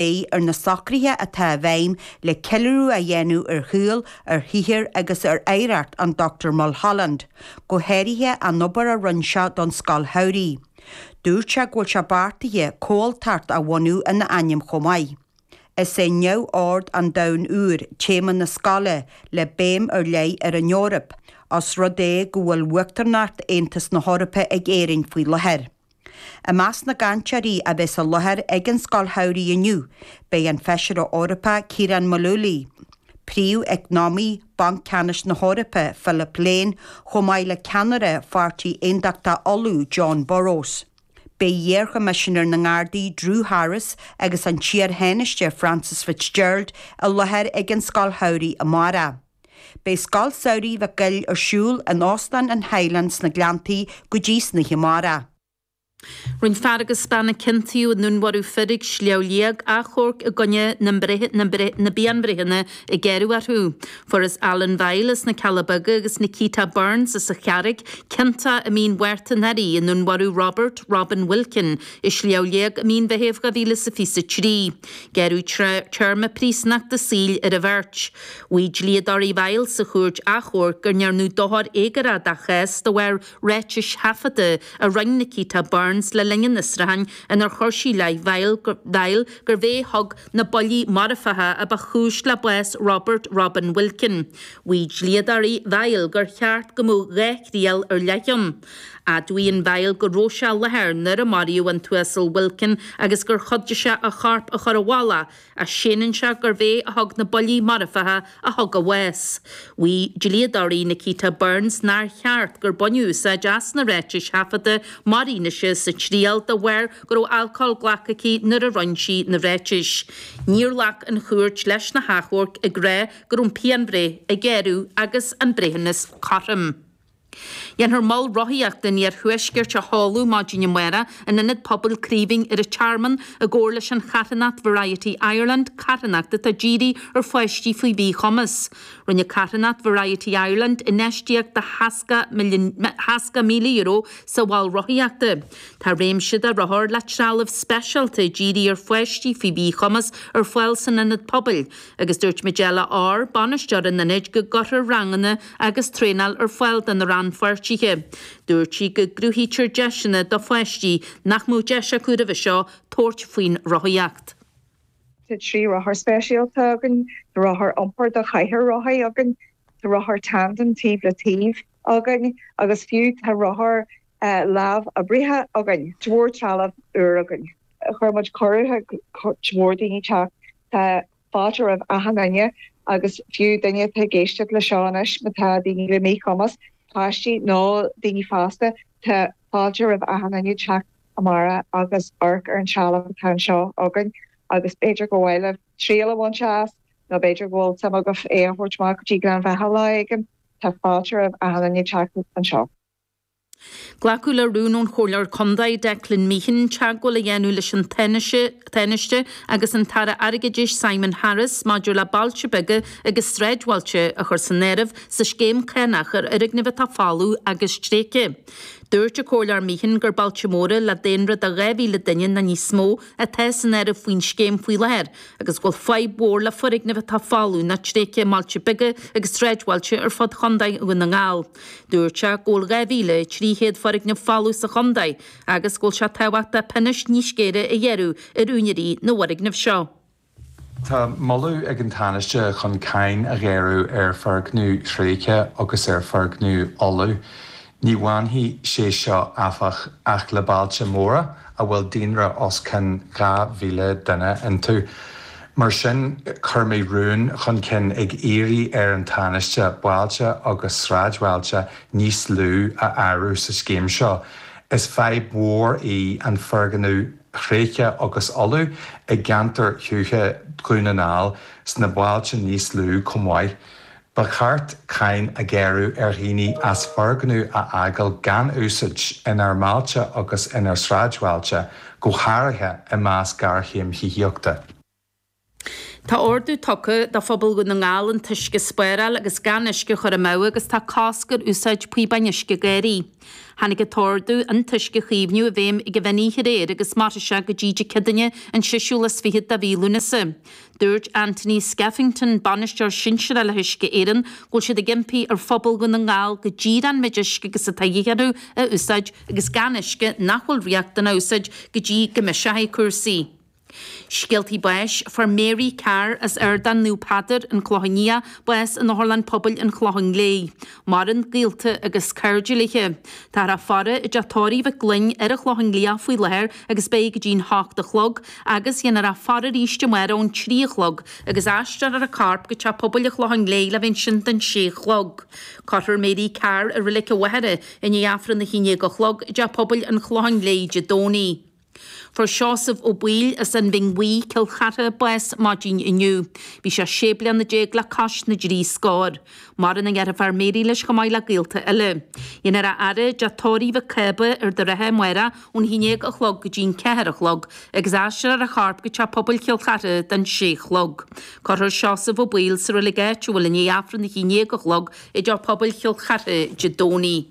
Beidh ar na socruithe atá i bhfeidhm le ceiliúradh a dhéanamh ar shaol, ar shaothar agus ar oidhreacht an Dr Mulholland, go háirithe an obair a rinne sé don Scoil Shamhraidh. Dúirt sé go bhfuil sé beartaithe Comhaltacht a bhunú ina ainm chomh maith. Is é Neamhord an Domhain Úir téama na Scoile le béim ar leith ar an Eoraip, os rud é go bhfuil uachtaranacht Aontas na hEorpa ag Éirinn faoi láthair. I measc na gcainteoirí a bheas i láthair ag an Scoil Shamhraidh inniu, beidh an Feisire Eorpach Ciaran Mullooly, Príomh-Eacnamaí Bhanc Ceannais na hEorpa Philip Lane chomh maith le ceannaire Pháirtí Aondachtach Uladh Jon Burrows. Beidh iarChoimisinéir na nGardaí Drew Harris agus an tIar-Thánaiste Frances Fitzgerald i láthair ag an Scoil Shamhraidh amárach. Beidh Scoil Samhraidh Mhic Goill ar siúl in Óstán an Highland sna Gleanntaí go dtí tráthnóna amárach. Rinne fear agus bean a ciontaíodh i ndúnmharú fir ag Sliabh Liag, achomharc i gcoinne na bpianbhreitheanna a gearradh orthu. Fuarthas Alan Vial as na Cealla Beaga agus Nikita Burns as an Charraig ciontach i Mí an Mhárta anuraidh i ndúnmharú Robert Robin Wilkin i Sliabh Liag i Mí an Mheithimh 2023. Gearradh téarma príosúnachta saoil ar an bheirt. Mhaígh dlíodóirí Vial sa Chúirt Achomhairc gur ndearnadh dochar éagórach dá chás de bharr ráitis thaifeadta a rinne Nikita Burns le linn an fhiosrúcháin inar chuir sí i leith Vial gurbh é a thug na buillí marfacha a ba chúis le bás Robert Robin Wilkin. Mhaígh dlíodóirí Vial gur cheart go mbeadh dhá thriail ar leith ann. Admhaíonn Vial go raibh sé i láthair nuair a maraíodh an tUasal Wilkin agus gur chuidigh sé a chorp a chur i bhfolach, ach séanann sé gurbh é a thug na buillí marfacha a thug a bhás. Mhaígh dlíodóirí Nikita Burns nár cheart gur baineadh úsáid as na ráitis thaifeadta mar fhianaise sa triail de bharr go raibh alcól glactha aici nuair a rinne sí na ráitis. Níor ghlac an chúirt leis na hachomhairc, ag rá go raibh an phianbhreith a gearradh agus an breithiúnas cothrom. Dhéanfar mol rothaíochta an Iarthuaiscirt a sheoladh maidin amárach in Ionad Pobail Craoibhín ar an Tearmann i gcomhar leis an charthanacht Variety Ireland, carthanacht atá dírí ar pháistí faoi mhíchumas. Rinne carthanacht Variety Ireland infheistíocht de €60,000 sa mhol rothaíochta. Tá réimse de rothair le trealamh speisialta dírí ar pháistí faoi mhíchumas ar fáil san Ionad Pobail. Agus dúirt Majella Orr, bainisteoir an Ionaid, go gcuirfear ranganna agus traenáil ar fáil do na rannpháirtithe. Dúirt sí go gcruthaítear deiseanna do pháistí nach mbeadh deis acu roimhe seo tabhairt faoin rothaíocht. Tá trí rothar speisialta againn, tá rothar iompair do chathaoir rothaí againn, tá rothar tandem taobh le taobh againn agus fiú tá rothair lámhoibrithe againn. Chuir muid cuireadh chuig cuid mhór daoine teacht Tá fáilte roimh achan duine, agus fiú duine atá ag éisteacht le seo anois, má tá daoine le míchumas, páistí nó daoine fásta, tá fáilte roimh achan duine teacht amárach agus amharc ar an trealamh atá anseo againn agus b'fhéidir gur mhaith libh triail a bhaint as nó b'fhéidir go bhfuil suim agaibh é a thabhairt amach go dtí Gleann Bheatha lá éigin. Tá fáilte roimh achan duine teacht anseo. Glacadh le rún ón Chomhairleoir Contae, Declan Meehan, teagmháil a dhéanamh leis an Tánaiste agus an tAire Airgeadais, Simon Harris, maidir le bailte beaga agus sráidbhailte a chur san áireamh sa scéim cánach ar fhoirgnimh atá folamh agus tréigthe. Dúirt an Comhairleoir Meehan gur bailte móra le daonra de 2,000 duine nó níos mó atá san áireamh faoin scéim faoi láthair agus go bhfuil fadhb mhór le foirgnimh atá folamh nó tréigthe i mbailte beaga agus sráidbhailte ar fud Chontae Dhún na nGall. Dúirt sé go bhfuil 2,300 foirgneamh folamh sa chontae agus go bhfuil sé tábhachtach pionós níos géire a ghearradh ar úinéirí na bhfoirgneamh seo. Tá moladh ag an Tánaiste chun cáin a ghearradh ar fhoirgnimh thréigthe agus ar fhoirgnimh fholmha. Ní bhainfidh sé seo, áfach, ach le bailte móra a bhfuil daonra os cionn 2,000 duine iontu. Mar sin, chuir mé rún chun cinn ag iarraidh ar an Tánaiste bailte agus sráidbhailte níos lú a áireamh sa scéim seo. Is fadhb mhór í an foirgneamh tréigthe agus folamh i gceantair thuaithe Dhún na nGall sna bailte níos lú chomh maith. Ba cheart cáin a ghearradh ar dhaoine as foirgneamh a fhágáil gan úsáid, inár mbailte agus inár sráidbhailte, go háirithe i measc géarchéim thithíochta. Tá ordú tugtha do phobal Dhún na nGall an t-uisce a spáráil agus gan uisce a chur amú agus tá cosc ar úsáid píobáin uisce gairdín. Tháinig an t-ordú an t-uisce a chaomhnú i bhfeidhm ag meán oíche aréir agus mairfidh sé go dtí Dé Céadaoin an séú lá is fiche de mhí Lúnasa. Dúirt Anthony Skeffington, Bainisteoir Sinsearach le hUisce Éireann, go bhfuil siad ag impí ar phobal Dhún na nGall go díreach an méid uisce agus atá de dhíth orthu a úsáid, agus gan uisce nach bhfuil riachtanach a úsáid go dtí go mbiseoidh cúrsaí. Scéalta Báis, Fuair Mary Carr as Ardán Naomh Peadair, An Clochán Liath, bás in Otharlann Pobail an Chlocháin Léith. Maireann gaolta agus cairde léi. Táthar á faire i dteach tórraimh Mhic Gloinn ar an Chlochán Liath faoi láthair agus beidh go dtí'n hocht a chlog agus dhéanfar a faire arís amárach ón trí a chlog agus aistreofar a corp go Teach Pobail an Chlocháin Léith le bheith ansin don sé chlog. Cuirfear Mary Carr i Reilig an Mhachaire i ndiaidh Aifreann a haon dhéag a chlog i dTeach Pobail an Chlocháin Léith Dé Domhnaigh. Fuair Seosamh Ó Baoill as an Bhinn Bhuí, Cill Chartha, bás maidin inniu. Bhí sé sé bliana déag le cois na dtrí scór. Maireann a dheirfiúr Mary leis chomh maith le gaolta eile. Dhéanfar a fhaire i dteach tórraimh Mhic Cába Ard an Rátha amárach ón haon déag a chlog go dtí'n ceathair a chlog agus aistreofar a chorp go teach pobail Chill Chartha don sé chlog. Cuirfear Seosamh Ó Baoill sa reilig áitiúil i ndiaidh Aifreann a haon déag a chlog i dteach pobail Chill Chartha Dé Domhnaigh.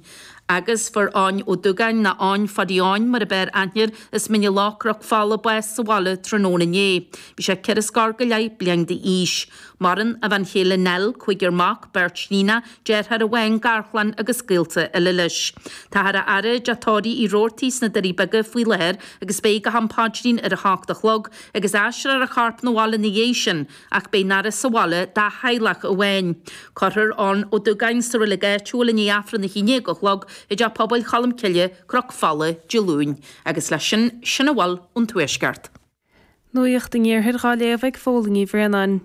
Agus fuair Eoghan Ó Dúgáin, nó Eoghan Phaddy Eoghain mar ab fhearr aithne air as Mín na Loch, Cnoc Fola, bás sa bhaile tráthnóna inné. Bhí sé ceithre scór go leith bliain d'aois. Maireann a bhean chéile Nell, cúigear mac, beirt níon, deartháir amháin, garchlann agus gaolta eile leis. Táthar á fhaire i dteach tórraimh Uí Robhartaigh sna Doirí Beaga faoi láthair agus beidh go ham paidrín ar a hocht a chlog agus aistreofar a chorp 'na bhaile 'na dhiaidh sin, Ach beidh an fhaire sa bhaile dá theaghlach amháin. Cuirfear Eoghan Ó Dúgáin sa reilig áitiúil i ndiaidh Aifreann a haon dhéag a chlog i dTeach Pobail Cholm Cille, Cnoc Fola, Dé Luain. Agus leis sin, sin a bhfuil ón Tuaisceart. Nuacht an Iarthair dhá léamh ag Fódhla Ní Bhraonáin.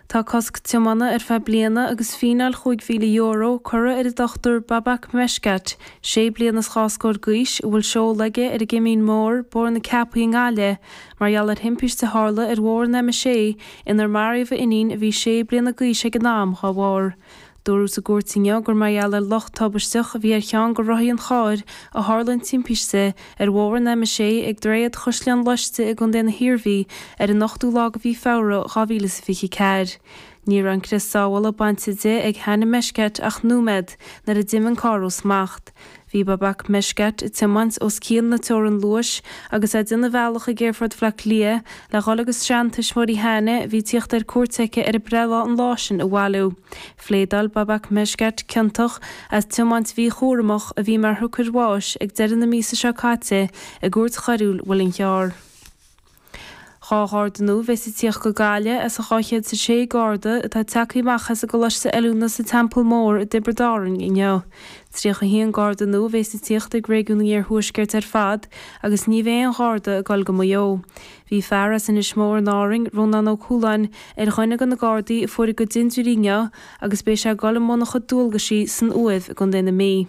Tá cosc tiomána ar feadh bliana agus fíneáil chúig mhíle euro curtha ar an Dr Babak Meshkat, sé bliana is dhá scór d'aois, a bhfuil seoladh aige ar an gCimín Mór, Bóthar na Ceapaí i nGaillimh, Mar gheall ar thimpiste a tharla ar bhóthar an M6, inar maraíodh a iníon, a bhí sé bliana d'aois ag an am, dá bharr. Dúradh sa gcúirt inniu gur mar gheall ar locht tubaisteach a bhí ar cheann de rothaí an chairr a tharla an timpiste ar bhóthar an M6 ag Droichead Chaisleán Loiste i gContae na hIarmhí ar an 8ú lá de mhí Feabhra 2024. Ní raibh an crios sábhála bainte di ag Hana Meshkat ach nóiméad nuair a d'imigh an carr ó smacht. Bhí Babak Meshkat ag tiomáint os cionn na teorann luais agus é ag déanamh a bhealach ag Aerfort Bhleá Cliath le dhul agus seantuismitheoirí Hana a bhí ag tíocht ar cuairt aici ar a breithlá an lá sin a bhailiú. Phléadáil Babak Meshkat ciontach as tiomáint mhíchúramach, a bhí mar shiocair bháis ag deireadh na míosa seo caite i gCúirt Choiriúil an Mhuilinn Chearr. Dhá Gharda nua a bheas ag tíocht go Gaillimh as an 206 Garda atá ag teacht amach as an gColáiste Oiliúna sa Teampall Mór i dTiobraid Árainn inniu. 31 Garda nua a bheas ag tíocht ag Réigiún an Iarthuaiscirt ar fad agus ní bheidh aon Gharda ag dul go Maigh Eo. Bhí fear as Inis Mór in Árainn, Rónán Ó Cualáin, ar dhuine de na Gardaí a fuair a gcuid dindiúirí inniu agus beidh sé ag dul i mbun a chuid dualgaisí san Uaimh i gContae na Mí.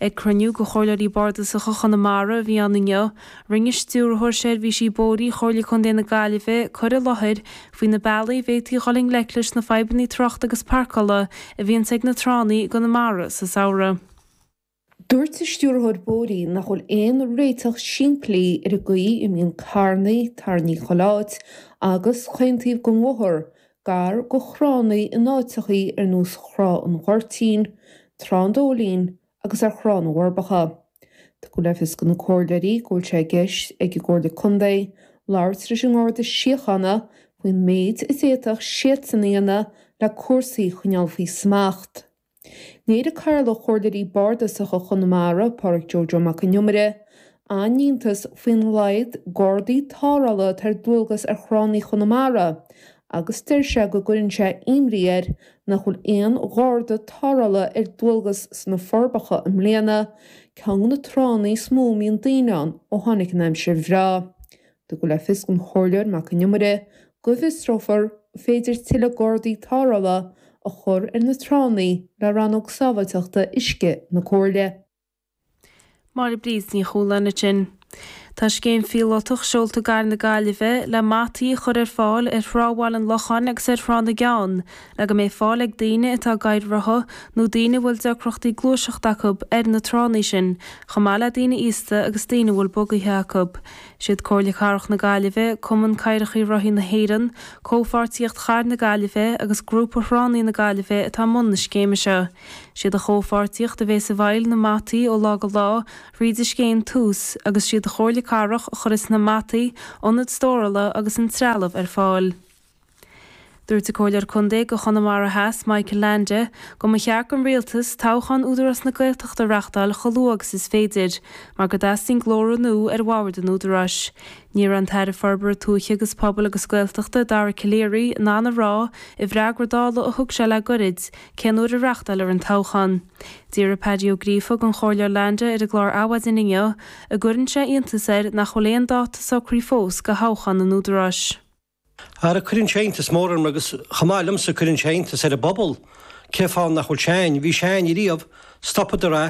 Ag cruinniú de Chomhairleoirí Bardasacha Chonamara a bhí ann inniu, rinne Stiúrthóir Seirbhísí Bóithrí Chomhairle Contae na Gaillimhe cur i láthair faoi na bealaí a bhféadfaí dhul i ngleic leis na fadhbanna tráchta agus pairceála a bhíonns ag na tránna i gConamara sa samhradh. Dúirt an Stiúrthóir Bóithrí nach bhfuil aon réiteach simplí ar an gcaoi a mbíonn carrannaí tarraingthe chuile áit, agus chaon taobh den bhóthar, gar do thránnaí in áiteachaí ar nós Thrá an Ghoirtín, Trá an Dóilín agus ar Thrá na bhForbacha. Tugadh le fios do na comhairleoirí go bhfuil sé i gceist ag an gComhairle Contae labhairt leis an nGarda Síochána faoin méid a d'fhéadfadh siadsan a dhéanamh le cúrsaí a choinneáil faoi smacht. Léirigh Cathaoirleach Chomhairleoirí bardasacha Chonamara, Pádraig Joe Joe Mac an Iomaire, an-iontas faoin laghad gardaí tarrthála atá ar dualgas ar thránnaí Chonamara agus deir sé go gcuireann sé imní air nach bhfuil aon gharda tarrthála ar dualgas sna Forbacha i mbliana, ceann de na tránna is mó a mbíonn daoine ann ó tháinig an aimsir bhreá. Tugadh le fios don Chomhairleoir Mac an Iomaire go bhfiosrófar an féidir tuilleadh gardaí tarrthála a chur ar na tránna le Rannóg Sábháilteachta Uisce na Comhairle. Máire Bríd Ní Chualáin ansin. Tá scéim phíolótach seolta i gCathair na Gaillimhe le mataí a chur ar fáil ar Thrá Bhaile an Locháin agus ar Thrá na gCeann le go mbeidh fáil ag daoine atá i gcathaoir rotha nó daoine a bhfuil deacrachtaí gluaiseachta acu ar na tránna sin chomh maith le daoine aosta agus daoine a bhfuil bugaithe acu. siad Comhairle Cathrach na Gaillimhe, Cumann Cathaoireacha Rothaí na hÉireann, Comhpháirtíocht Charr na Gaillimhe agus Grúpa Thránnaí na Gaillimhe atá i mbun na scéime seo. Siad an Chomhpháirtíocht a bheidh i bhfeighil na mataí ó lá go lá, thríd an scéim Tús, agus siad an Chomhairle Cathrach a chuirfeas na mataí, ionad stórála agus an trealamh ar fáil. Dúirt an Comhairleoir Contae do Chonamara Theas, Michael Leainde, go mba cheart don Rialtas toghchán Údarás na Gaeltachta a reachtáil chomh luath agus is féidir, mar go dteastaíonn glórtha nua ar bhord an Údaráis. Ní raibh an tAire Forbartha Tuaithe agus Pobail agus Gaeltachta, Dara Calleary, in ann a rá i bhfreagra Dála a thug sé le goirid, cén uair a reachtálfar an toghchán. D'fhiafraigh Baba Uí Ghríofa den Chomhairleoir Leainde ar an gclár Adhmhaidin inniu, an gcuireann sé iontas air nach bhfuil aon dáta socraithe fós do thoghchán an Údaráis. Ara cuireann sé iontas mór orm, agus chomh maith liomsa cuireann sé iontas ar an bpobal, cé fáth nach bhfuil sé ann, bhí sé ann ariamh, stopadar é,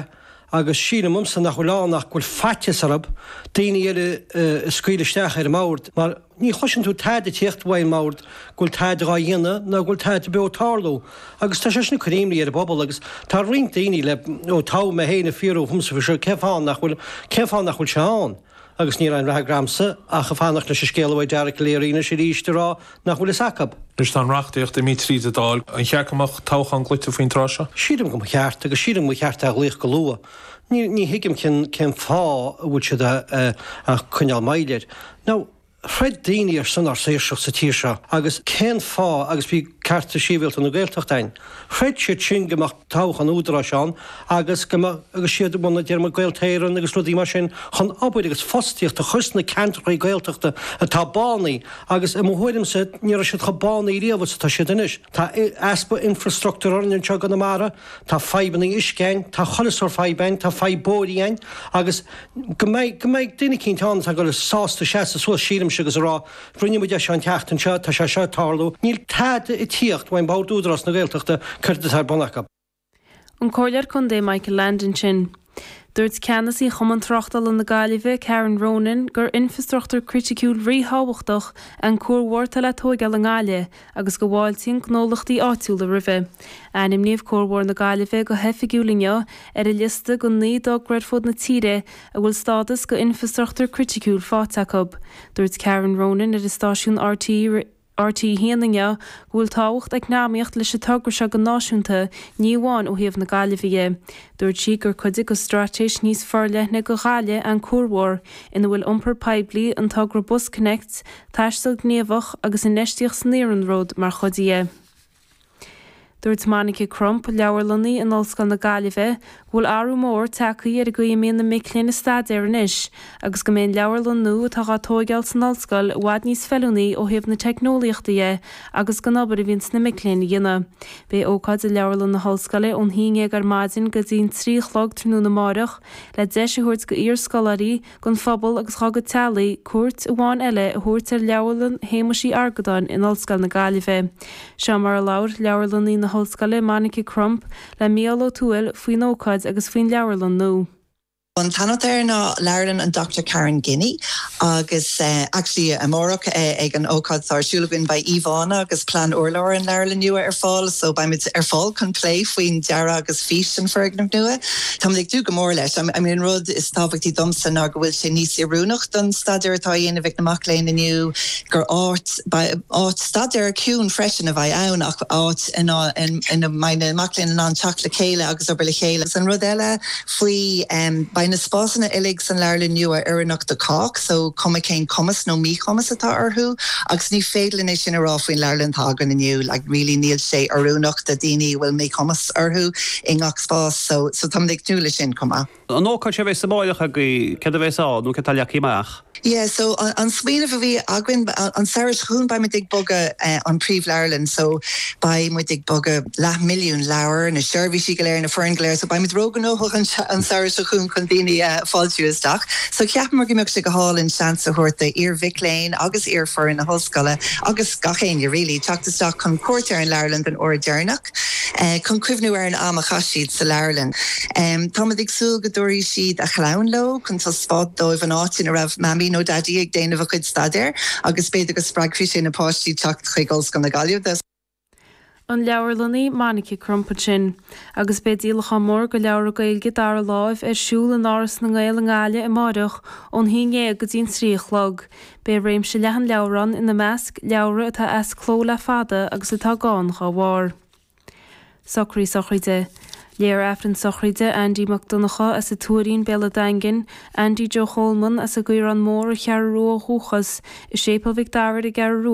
agus síltear dhomsa nach bhfuil ann ach go bhfuil faitíos orthub daoiní eile a scaoileadh isteach ar an mbord, mar ní chloiseann tú tada ag tíocht uaidh an mbord go bhfuil tada dhá dhéanamh ná go bhfuil tada beo ag tarlú, agus tá sé sin ag cur imní ar an bpobal, agus tá roinnt daoiní le, ó toghadh mé féin ag fiafraí dhíomsa faoi seo, cé fáth nach bhfuil, cén fáth nach bhfuil sé ann? Agus níl aon rogha agamsa ach ag fanacht leis an scéal uaidh Dara Calleary anois arís ag rá nach bhfuil fhios acu. Anois tá an reachtaíocht imithe tríd an Dáil, an cheart go mbeadh toghchán glaoite faoin tráth seo? Sílim go mba cheart, agus sílim go mba cheart é a ghlaoch go luath. Ní thuigim cén fáth a bhfuil siad ag coinneáil moill air. Now, throid daoine ar son ár saoirseacht sa tír seo agus cén fáth agus bhí cearta síbhialta na Gaeltachta ann. Chreid siad sin go mbeadh toghchán údaráis ann agus go mbeadh siad i mbun a dtéarma Gaeltarra Éireann agus rudaí mar sin chun obair agus fostaíocht a chur sna ceantrachaí Gaeltachta atá bánaithe agus i mo thuairimse ní raibh siad chomh bánaithe riamh is atá siad anois. Tá easpa infreastruchtúir orainn anseo i gConamara, tá fadhbanna uisce ann, tá chuile sórt fadhb ann, tá fadhb bóithrí ann agus go mbeidh, go mbeidh duine eicínt ann atá sásta seasamh suas sílimse agus a rá, Rinne muid é seo an tseachtain seo, tá sé seo ag tarlú, níl tada ag tíocht uaidh Bord Údarás na Gaeltachta céard atá ar bun acu. An Comhairleoir Contae Michael Leainde ansin. Dúirt Ceannasaí Chumann Tráchtála na Gaillimhe, Karen Ronan, gur infrastruchtúr criticiúil ríthábhachtach é an cuarbhóthar atá le tóigeáil i nGaillimh agus go bhfáiltíonn gnólachtaí áitiúla roimhe. Ainmníodh Cuarbhóthar na Gaillimhe go hoifigiúil inniu ar an liosta de naoi dtogra ar fud na tíre a bhfuil stádas d'Infrastruchtúr Criticiúil faighte acu. Dúirt Karen Ronan ar an stáisiún rte rté 1 inniu go bhfuil tábhacht eacnamaíocht leis an togra seo go náisiúnta, ní amháin ó thaobh na Gaillimhe de. Dúirt sí gur cuid de straitéis níos forleithne do Ghaillimh é an cuarbhóthar, ina bhfuil iompar poiblí, an togra BusConnects, taisteal gníomhach agus infheistíocht san iarnród mar chuid de. Dúirt Monica Crump, Leabharlannaí in Ollscoil na Gaillimhe, go bhfuil athrú mór tagtha ar an gcaoi a mbíonn na mic léinn ag staidéar anois agus go mbeidh an leabharlann nua atá á tóigeáil san ollscoil i bhfad níos feiliúnaí ó thaobh na teicneolaíochta de agus don obair a bhíonns na mic léinn a dhéanamh. Beidh ócáid i Leabharlann na hOllscoile ón haon déag ar maidin go dtí'n trí a chlog tráthnóna amáireach le deis a thabhairt go iar-scoláirí don phobal agus dá gcuid teaghlaigh cuairt amháin eile a thabhairt ar Leabharlann Shéamais Uí Argadáin in Ollscoil na Gaillimhe. Seo mar a labhair Leabharlannaí na hOllscoile, Monica Crump, le Micheál Ó Tuathail faoin ócáid agus faoin leabharlann nua. An t-ainm air ná Leabharlann an Dr Karen Guinee agus actually amárach ag an ócáid atá ar siúl againn beidh íomhánna agus plean urláir an leabharlainne nua ar fáil so beidh muid ar fáil chun plé faoin dearadh agus fís an foirgnimh nua. Tá mé ag dúil go mór leis. An rud is tábhachtaí domsa ná go bhfuil sé níos oiriúnach don staidéar atá á dhéanamh ag na mac léinn inniu, gur áit, áit staidéir ciúin freisin, a bheidh ann, ach áit ina mbeidh na mac léinn in ann teacht le chéile agus obair le chéile. Agus an rud eile faoi, beidh na spásanna uilig san leabharlann nua oiriúnach do chách, so cuma cén cumas nó míchumas atá orthu. Agus ní féidir linn é sin a rá faoin leabharlann atá againn inniu, like really níl sé oiriúnach do daoine a bhfuil míchumas. fáilte orthu i ngach spás so tá muid ag tnúth le sin chomh maith. An ócáid seo a bheas amáireach agaibh, céard a bheas ann nó céard atá leagtha amach? Yeah so an smaoineamh a bhí againn an samhradh seo chugainn beidh muid ag bogadh an príomhleabharlann so beidh muid ag bogadh leath milliún leabhar, na seirbhísí go léir, na foireann go léir so beidh muid ró-ghnóthach an samhradh seo chugainn chun daoine a fáiltiú isteach. So cheapamar go mbeadh sé go hálainn seans a thabhairt do iar-mhic léinn agus iar-foireann na hollscoile agus gach éinne really teacht isteach chun cuairt ar an leabharlann den uair dheireanach. Agus chun cuimhniú ar an am a chaith siad sa leabharlann. Táimid ag súil go dtabharfaidh siad a chlann leo chun taispeáint dóibh an áit ina raibh Mamaí nó Daidí ag déanamh a chuid staidéir agus b'fhéidir go spreagfaidh sé na páistí teacht chuig Ollscoil na Gaillimhe. An leabharlannaí Monica Crump ansin. Agus beidh díolachán mór de leabhra Gaeilge dara láimh ar siúl in Áras na nGael i nGaillimh amáireach ón haon dhéag go dtí an trí a chlog. Beidh réimse leathan leabhar ann, ina measc, leabhra atá as cló le fada agus atá gann dá bharr. Socraí sochraide. Léifear Aifreann sochraide Aindí Mac Donnacha as an Tuairín, Béal an Daingin, Aindí Joe Choleman as an gCaorán Mór, an Cheathrú Rua ó dhúchas, i Séipéal Mhic Dara ar an gCeathrú Rua,